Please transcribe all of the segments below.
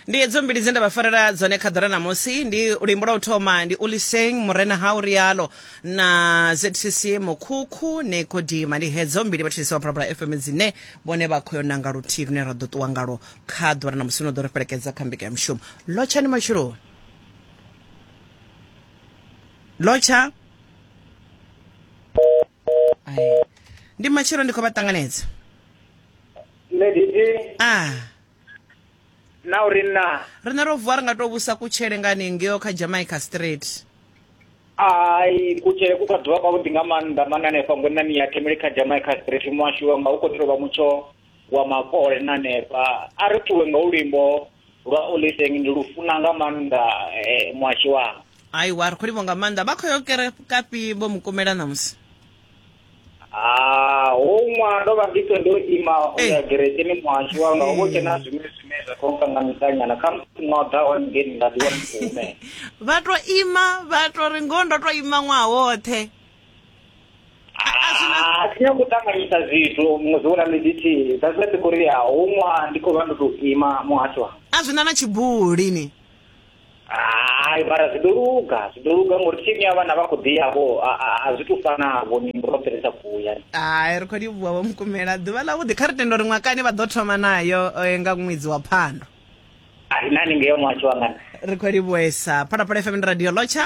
ndi edzo mbili dze nda vha farela dzone kha ḓora ṋamusi ndi luimbo lwa u thoma ndi uliseng murena ha urialo na zcc mukhukhu nekodima ndi hedzo mbili vhatshisi wa phalaphala fm dzine vhone vha khoyo nanga luthihi lune ra ḓo ṱuwa ngalo kha ḓora ṋamusi no ḓo ri fhelekedza kha mbika ya mushumo lotshani matshuloni lotsha Ai. ndi matshelo ndi khou vha ṱanganedza nṋe nditi a na uri na riṋe ro vuwa ri nga tou vhusa kutshele nga hanengeo kha jamaica street ai kutshele ku kha ḓuvha kwavhuḓi nga maanḓa mane hanefha ngwenani ya themele kha jamaica street muhashu wanga u khou ḓi tovha mutsho wa makole na neba a ri ṱuwe nga ulimbo lwa oliteng ndi lufuna nga maanḓa eh, muhashi wanga aiwa ri khou livho nga maanḓa vha khou yo kerekapi vho mukumela ṋamusi Ah, huṅwa ndo vha ndi to ndo ima u ya Eh. gerekeni muhashi wanga uvho tshena zwiṅwe zwine zwa khou kanga mitanyana kha musi noḓa one ngeni nda ḓiwana ndi khou humela vha to ima vha to ri ngoho ndo to ima ṅwaha woṱhe Ah, a thi nyagi u ṱanganyisa zwithu muṅwe zwi vhona midithihi that's why ndi khou ri ya huṅwa ndi khou vha ndo tou ima muhasho wa a zwi na na tshibuli ni hai mara zwi ḓo luga zwi ḓo luga ngori thimu ya vhana vha khou ḓi yavho a- a- a zwi tou fanavho ni ro fhelisa kuya hai ri khou livhuwa vho mukumela ḓuvha ḽavhuḓi kha ri tenda uri ṅwakani vha ḓo thoma nayo eh, nga ṅwedzi wa phando a ri nani ngeyo muhasho wangana ri khou livhuwesa phalaphala fm ndi radio lotsha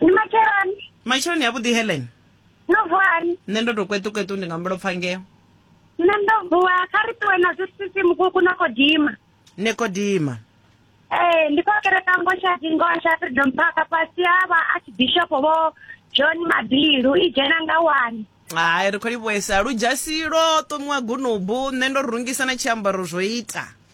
ni matsheloni matsheloni ya vhuḓi helen no vuwani nṋe ndo to kweṱukweṱu ndi nga mbulopfa ngeo nṋe ndo vuwa kha ri ṱuwe na zwisisi mukuku na kodima nekodima ee ndi khou kereka ngosha dzingosha freedom park fhasi ha vha archbishop vho john mabilu i dzhena nga wani hai ri khou livhuesa ludzhasi lwo ṱomiwa gunubu nṋe ndo rungisa na tshiambaro zwo ita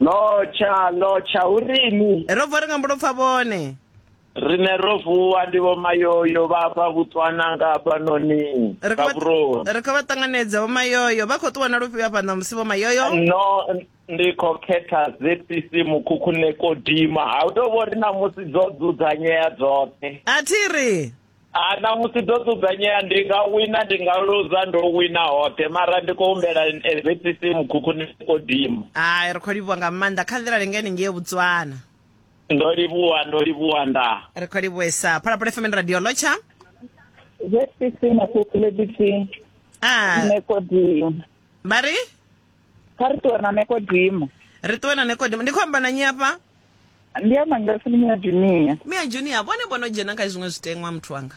No tsha no tsha urini. Ro bva ri nga mbulo pfa vhone. Rine ro vuwa ndi vho mayoyo vha fha vhutswana nga fhanoni kha vhuroni. Ri kho vha ṱanganedza vho mayoyo vha khou ṱuwa na lufhio hafha na musi vho mayoyo. No ndi kho khetha ZPC mukhukhune ko dima ha u tou vho ri na musi dzo dzudzanyea dzoṱhe. A thi ri. a na musi ndo dzudzanyea ndi nga wina ndi nga luza ndo wina hoṱhe mara ndi khou humbela zcc mukhukhuni kodimo hai ri khou livhuwa nga maanḓa kha nḓila lingani ngei botswana ndo livhuwa ndo livhuwa nda ri khou livhuwesa phalaphala fm radio lotsha zcc makhukhulebisi a nekodimo vha ri kha ri ṱuwe na nekodimo ri ṱuwe na nekodimo ndi khou amba na nyi afha ndi ya mangasi ndi mina junior mia junior vhone vho no dzhena kha zwiṅwe zwiteṅwa muthu wanga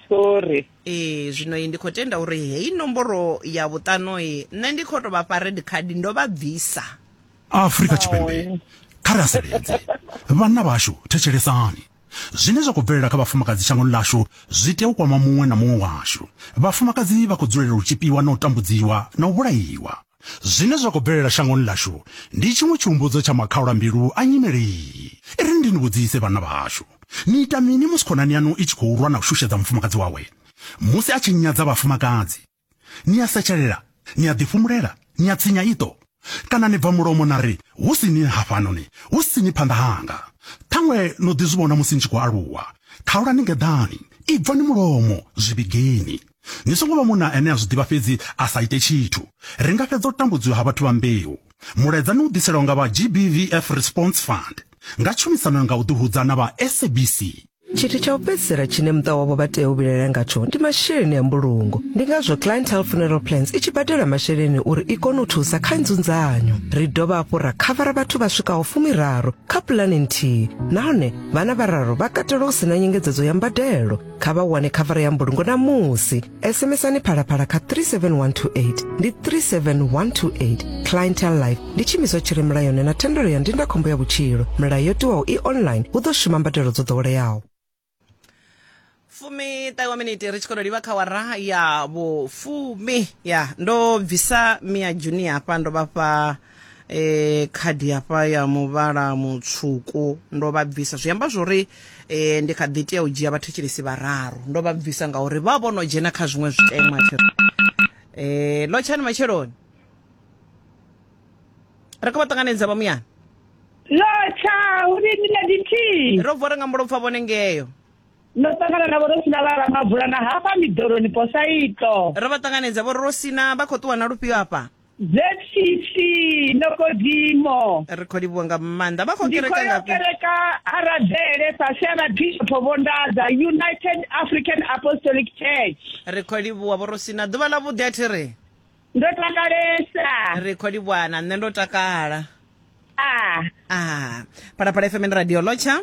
sorry ee zwino ndi khou tenda uri heyi nomboro ya vhuṱano i nṋe ndi khou tou vha fha red card ndo vha bvisa afrika tshipembe kha ri aseledze vhanna vhashu thetshelesani zwine zwa khou bvelela kha vhafumakadzi shangoni ḽashu zwi tea u kwama muṅwe na muṅwe washu vhafumakadzi vha khou dzulela u tshipiwa na u tambudziwa na u vhulaiwa Zwine zwa khou bvelela shangoni ḽashu ndi tshiṅwe tshihumbudzo tsha makhaula-mbilu a nyimele iyi. I ri ndi ni vhudzise vhanna vhashu, ni ita mini musi khonani yanu i tshi khou lwa na u shushedza mufumakadzi wawe? Musi a tshi nyadza vhafumakadzi, ni a setshelela, ni a ḓifhumulela, ni a tsinya iṱo, kana ni bva mulomo na ri, Hu si ni hafhanoni, hu si ni phanḓa hanga? Ṱhaṅwe no ḓi zwi vhona musi ni tshi khou aluwa. Khaulani ngeḓani, ibvani mulomo, zwi vhigeni. Ni songo vha munna ane a zwi ḓivha fhedzi a sa ite tshithu. Ri nga fhedza u tambudziwa ha vhathu vha mbeu. Mulaedza ni u ḓiselwa nga vha GBVF Response Fund nga tshumisano nga u ḓihudza na vha SABC. Tshithu tsha u fhedzisela tshine muṱa wavho vha tea u vhilaela ngatsho ndi masheleni a mbulungo. Ndi ngazwo Clientele Funeral Plans i tshi badela masheleni uri i kone u thusa kha nzunzanyo. Ri dovha hafhu ra khavara vhathu vha swikaho fumiraru kha pulane nthihi nahone vhana vhararu vha katelwa hu si na nyengedzedzo ya mbadelo. kha vha wane khavara ya mbulungo na musi sms-ani phalaphala kha 37128 ndi 37128 clientel life ndi tshiimiswa tshi re mulayoni na thendelo ya ndindakhombo ya vhutshilo milayo yo tiwaho i online hu ḓo shuma mbadelo dzo ḓoweleaho fumi ṱahiwa miniti ri tshi khou livha kha wara ya vhufumi ya ndo bvisa mia juni hafha ndo vhafha eh khadi hafha ya muvhala mutswuku ndo vha bvisa zwi amba zwori eh ndi kha ḓi tea u dzhia vhathetshelesi vhararu ndo vha bvisa ngauri vha vho no dzhena kha zwiṅwe zwitema thi eh lo tshani matsheloni ri khou vha ṱanganedza vha muyana lotsha uri ni na dithihi ro bvo ri nga mulopfa vhone ngeyo ndo ṱangana navho ro sina vha ramabvula na hafha miḓoroni posaito ro vha ṱanganedza vho ri ro sina vha khou ṱuwa na lufhio hafha ZCC Nokodimo. Ri khou livhuwa nga maanḓa. Vha khou kereka nga ku. Kereka Aradele fhasi ha Bishop Vondadza United African Apostolic Church. Ri khou livhuwa vho Rosina ḓuvha ḽa vhuḓi a thi ri. Ndo takalesa. Ri khou livhuwa na nṋe ndo takala. Ah. Ah. Phalaphala FM radio lotsha.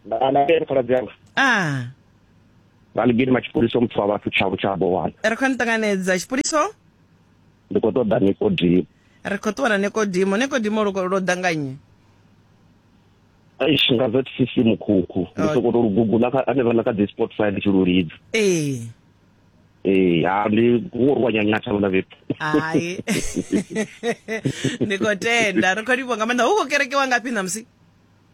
Na na phalaphala. Ah. vha ni gidima tshipoliso muthu wa vhathu tshavho tsha bowana ri khou nṱanganedza tshipoliso ndi khou ṱoḓa nikodimo ri khou ṱuwa na nikodimo nikodimo lo danganye eish nga zcc mukhukhu ndi oh. sokoto lugugu anevha na kha dzi sport fire ndi tshi lu lidza ee ee ha ndi wo ri wa nyanyatha vhona vhethu hai ndi khou tenda ri khou livho nga maanḓa hu khou kerekiwa ngafhi ṋamusi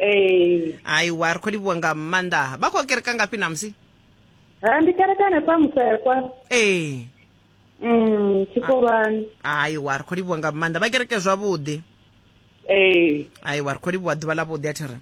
ee aiwa ri khou livhuwa nga maanḓa vha khou kereka ngafhi namusi ha ndi kereka hanefha musekwa ee um tshikolwani aiwa ri khou livhuwa nga maanḓa vha kereke zwavhuḓi ee aiwa ri khou livhuwa ḓuvha ḽa vhuḓi a thi ri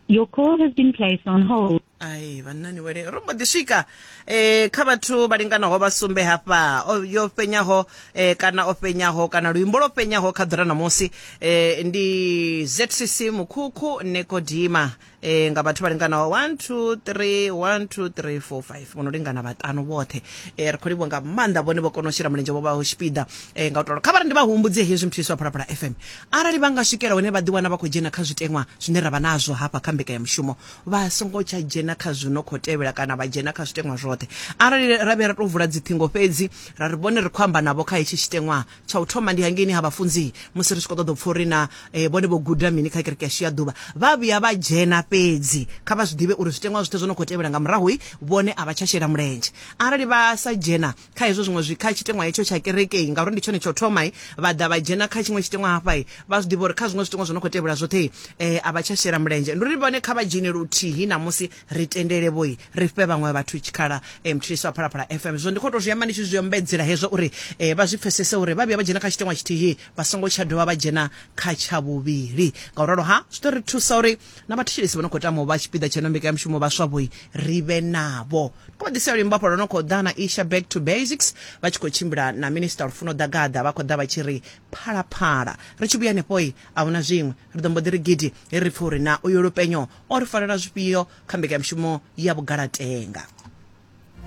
Your call has been placed on hold. ai vhannani wele ro mbo ḓi swika eh kha vhathu vha linganaho vha sumbe hafha yo fenyaho eh kana o fenyaho kana luimbo lwo fenyaho kha ḓura ṋamusi eh ndi ZCC Mukhukhu Nekodima eh nga vhathu vha linganaho 1 2 3 1 2 3 4 5 vhono lingana vhaṱanu vhoṱhe eh ri khou livhuwa nga maanḓa vhone vho kona u shela mulenzhe vho vha ho tshipiḓa eh nga u tolo kha vha ri ndi vha humbudze hezwi muthu iswa phalaphala FM arali vha nga swikela hone vha ḓi wana vha khou dzhena kha zwiteṅwa zwine ra vha nazwo hafha kha mbeka ya mushumo vha songo tsha dzhena kha zwi no khou tevhela kana vha dzhena kha zwiteṅwa zwoṱhe arali ra vhe ra tou vula dziṱhingo fhedzi ra ri vhone ri khou amba navho kha hetshi tshiteṅwa tsha u thoma ndi hangeini ha vhafunzi musi ri tshi khou ṱoḓa u pfha uri na eh, vhone vho guda mini kha kereke yashu ya ḓuvha vha vhuya vha dzhena fhedzi kha vha zwi ḓivhe uri zwiteṅwa zwoṱhe zwo no khou tevhela nga murahu vhone a vha tsha shela mulenzhe arali vha sa dzhena kha hezwo zwiṅwe zwi kha tshiteṅwa hetsho tsha kerekei ngauri ndi tshone tsho thoma vha ḓa vha dzhena kha tshiṅwe tshiteṅwa hafha vha zwi ḓivha uri kha zwiṅwe zwiteṅwa zwo no khou tevhela zwoṱhe um a vha tsha shela mulenzhe ndi uri vhone kha vha dzhene luthihi ṋamusi ri tendele vhoi ri fhe vhaṅwe vhathu tshikhala um mthulisi wa phalaphala fm zwo ndi khou tou zwi amba ndi tshi zwi ombedzela hezwo uri um vha zwi pfesese uri vha vhuya vha dzhena kha tshiteṅwa tshithihi vha songo tsha dovha vha dzhena kha tsha vhuvhili nga u ralo ha zwi ḓo ri thusa uri na vhathetshelesi vha no khou tama u vha tshipiḓa tsha ino mbekanyamushumo vhaswa vhoi ri vhe navho kho vha ḓisela luimbo hafha lwo no khou ḓa na isha back to basics vha tshi khou tshimbila na minista lufuno ḓagaḓa vha khou ḓa vha tshi ri phalaphala ri tshi vhuya hanefhoi a huna zwiṅwe ri ḓo mbo ḓi ri gidi he ri pfha uri na uyo lupenyo o ri farela zwifhio kha mbekanyamushumo ya vhugalatenga